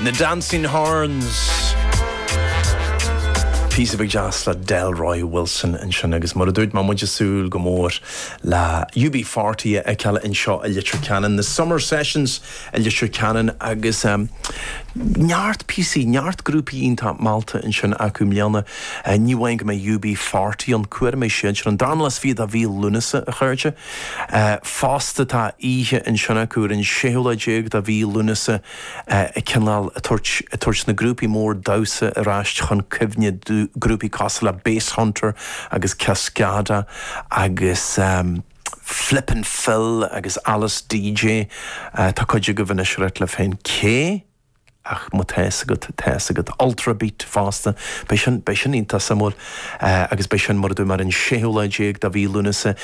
The Dancing Horns. Píosa beag deas le Delroy Wilson ansin agus mar a dúirt mé muid ag súil go mór le UB40 a fheiceáil anseo i Leitir Ceanainn, na Summer Sessions i Leitir Ceanainn agus neart píosaí, neart grúpaí iontach meallta ansin acu i mbliana. Ní amháin go mbeidh UB40 ann, go mbeidh siadsan ar an darna lá is fiche de mhí Lúnasa, a chairde. Fosta, tá oíche ansin acu ar an 6ú lá déag de mhí Lúnasa ag cineál tabhairt na grúpaí mór damhsa ar ais chun cuimhne, grúpaí cosúil le Basshunter agus Cascada agus Flip 'n' Fill agus Alice DJ, tá cuid agaibh anois ag ráit libh féin, cé. Ach má tá 'fhios agat, tá 'fhios agat. Ultrabeat fosta. Beidh sin, beidh sin iontach suimiúil. Agus beidh sin, mar a dúirt mé, ar an séú lá déag de mhí Lúnasa.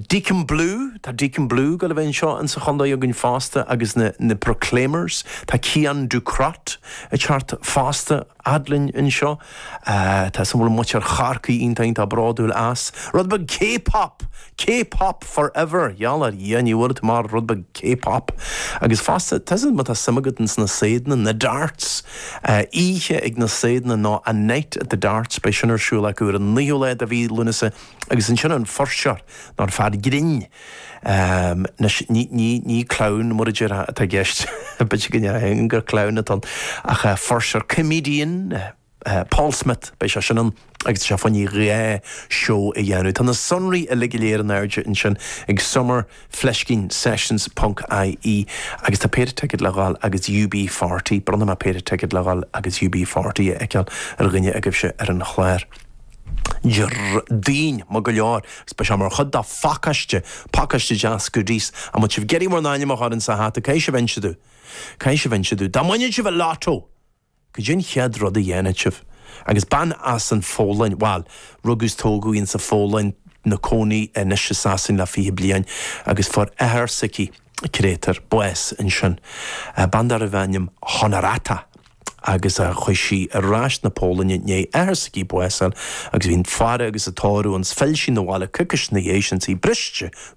Deacon Blue, tá Deacon Blue ag dul a bheith anseo insa chontae againn fosta agus na, na Proclaimers, tá Cian Ducrot ag teacht fosta. fhad linn anseo. Tá 'fhios agam go bhfuil muintir Chorcaí iontach bródúil as. Rud beag K-Pop! K-Pop for ever! Gheall ar Dhia, ní bhuailfidh tú amach rud beag K-Pop! Agus fosta, tá san má tá suim agat ins na saighdeanna, na Darts! Oíche ag na Saighdeanna nó A Night at the Darts, beidh sin ar siúl acu ar an naoú lá de mhí Lúnasa agus ansin an fuirseoir nó an fear grinn, Anois, ní clown, mar a deirtear, atá i gceist, b'fhéidir go ndéarfá gur clown atá ann, ach fuirseoir, comedian, Paul Smith, beidh seisean ann, agus tá sé fá choinne dhá sheó a dhéanamh. Tá na sonraí uilig go léir in airde ansin ag Summer fleiscín Sessions ponc IE, agus tá péire ticéad le dhul agus UB40, bronnfaidh mé péire ticéad le dhul agus UB40 a fheiceáil ar dhuine agaibhse ar an chlár. Déardaoin. Maith go leor, is beidh sé mar chuid de phacáiste, pacáiste deas goodies, dá mbeadh sibh ag iarraidh bhur n-ainm a chur insa hata, caithfidh sibh inse domh, caithfidh sibh inse domh, dá mbainfeadh sibh an lotto, goidé an chéad rud a dhéanfadh sibh, agus bean as an Pholainn, bhuel, rugadh is tógadh í ins an Pholainn, 'na cónaí anois i Sasain le fiche bliain, agus fuair athair s'aici, Créatúr bás ansin bean darbh ainm Honorata agus chuaigh sí ar ais 'na Polainne i ndéidh athair s'aici bás a fháil agus bhí an fhaire agus an tórramh ann 's phill sí 'na bhaile coicís 'na dhéidh sin 's í briste go